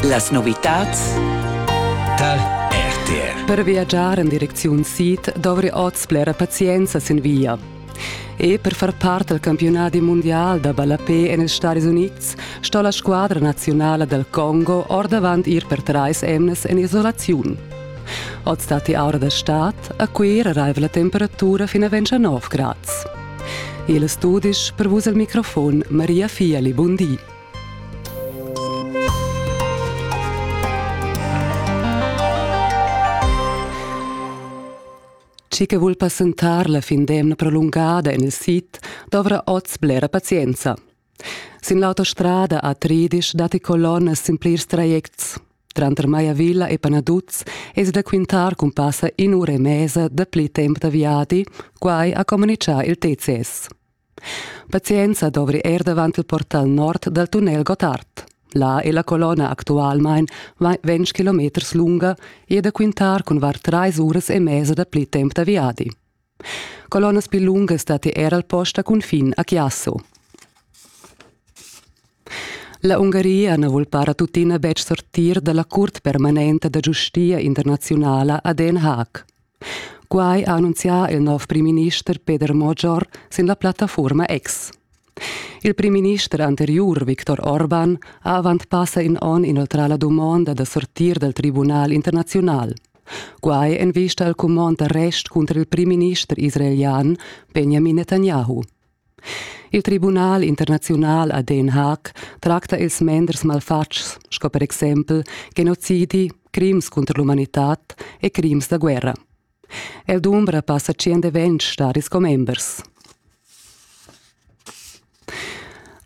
Las novitads tar RTR. Per viagiar en direcziun sid dovri oz blera pazienza sin via. E per far part al campionadi mondial da ballapé en ils Stadis Unids sto la squadra nazionala dal Congo ordavant ir per trais emnas en isolaziun. Oz datti aura da stad, a Cuira raiva la temperatura fin a 29 grads. Il studisch per vus el microfon Maria Fieli Bundi. Chi che vul passentar la fin d'emna prolungada en il sit dovrà oz blera pazienza. Sin l'autostrada a Tridisch datti colonnas sin plirs trajects. Tranter Maiavilla e Panaduz es da quintar cun passa in'ura e mesa dapli temp da viadi, quai ha comunichà il TCS. Pazienza dovri er davant il portal nord dal tunnel Gottard. Là è la colonna actualmain ventg km lunga e da quintar cun var trais uras e mesa dapli temp da viadi. Colonnas pli lungas datti er al post a cunfin a Chiasso. La Ungaria na vul para tuttina betg sortir da la curt permanenta da giustia internaziunala a Den Haag. Quai ha annunzià il nov primminister Peter Mojor sin la plattafurma X. Il primminister anteriur Viktor Orban ha avant passa in onn inoltrà la dumonda da sortir dal Tribunal internaziunal. Quai en vista al cumond d'arrest cunter il primminister israelian Benjamin Netanyahu. Il Tribunal internaziunal a Den Haag tracta ils menders malfatgs sco per exempel genozidi, crims contro l'umanità e crims da guerra. El dumbra passa tschient e ventg staris commembers.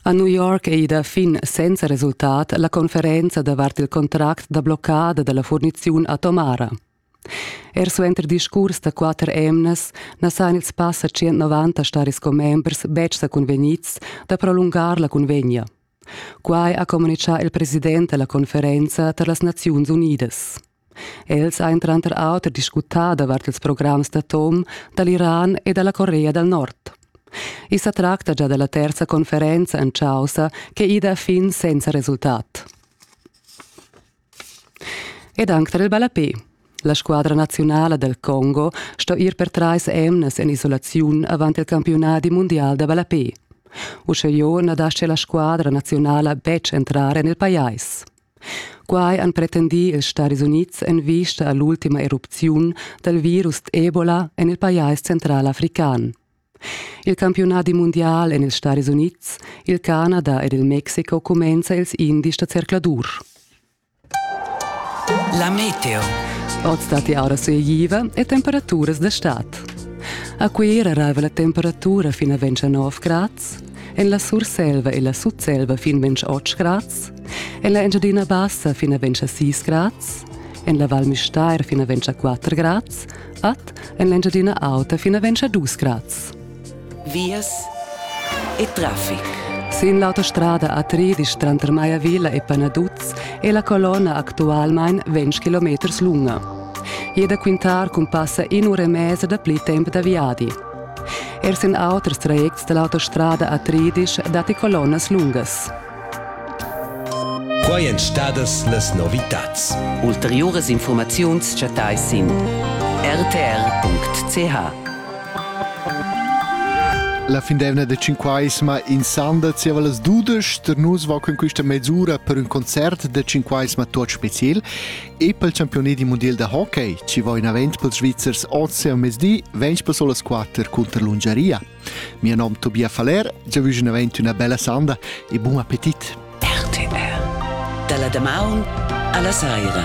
A New York è ida fin senza resultat la conferenza davart il contract da bloccada dalla furniziun atomara. Er suenter discurs da quatter emnas na san ils passa 190 staris commembers betg sa cunvegnids da prolungar la cunvegna. Quai ha communitgà il president da la conferenza tar las Naziuns Unidas. Els han tranter auter discutà davart ils programs d'atom da l'Iran e da la Corea dal Nord. I sa tracta gia della terza conferenza en causa che ida fin senza resultat. Ed anche tar il ballapé. La squadra nazionale del Congo sto ir per trais emnes en isolaziun avant il campionati mondial da ballapé. Usche jo na dasce la squadra nazionale betg entrare nel pajais. Quai han pretendì ils Stadis Unids en vista a l'ultima erupziun dal virus Ebola en il pajais central african. Il campiunadi mundial en ils Stadis Unids, il Canada ed il Mexico cumenza ils indies da zercladur. La meteo. Oz datti aura sueigiva e temperaturas d'estat. A Cuira arriva la temperatura fin a 29 grads, en la Surselva e la Sutselva fin 28 grads, Ella Engiadina Bassa fina ventscha 6 grads, en la Val Müstair fina ventscha 4 grads, at en l'Engiadina Auta fina ventscha 2 grads. Vias e traffic. Sin l'autostrada A3 tranter Maya Villa e Panaduz è la colonna actualmain 20 km lunga. E da quintar cun passa in ura e mezza da pli tempo da viadi. Er sin auters trajects dall'autostrada A13 datti colonnas lungas. Quai èn stadas las novitads. Ulteriuras infurmaziuns chattais sin rtr.ch. La findevna de Cinquaisma in Sanda zieva las dudesch per nus va con questa mesura per un concert de Cinquaisma tot special e pel campioni di mondial da hockey ci va in avent pels Svizzers oz a mesdi 20 per solas 4 contro l'Ungaria. Mio nom Tobias Faller, jeu vus navent una bella sanda e bon appetit. RTR. Dalla damaun alla saira.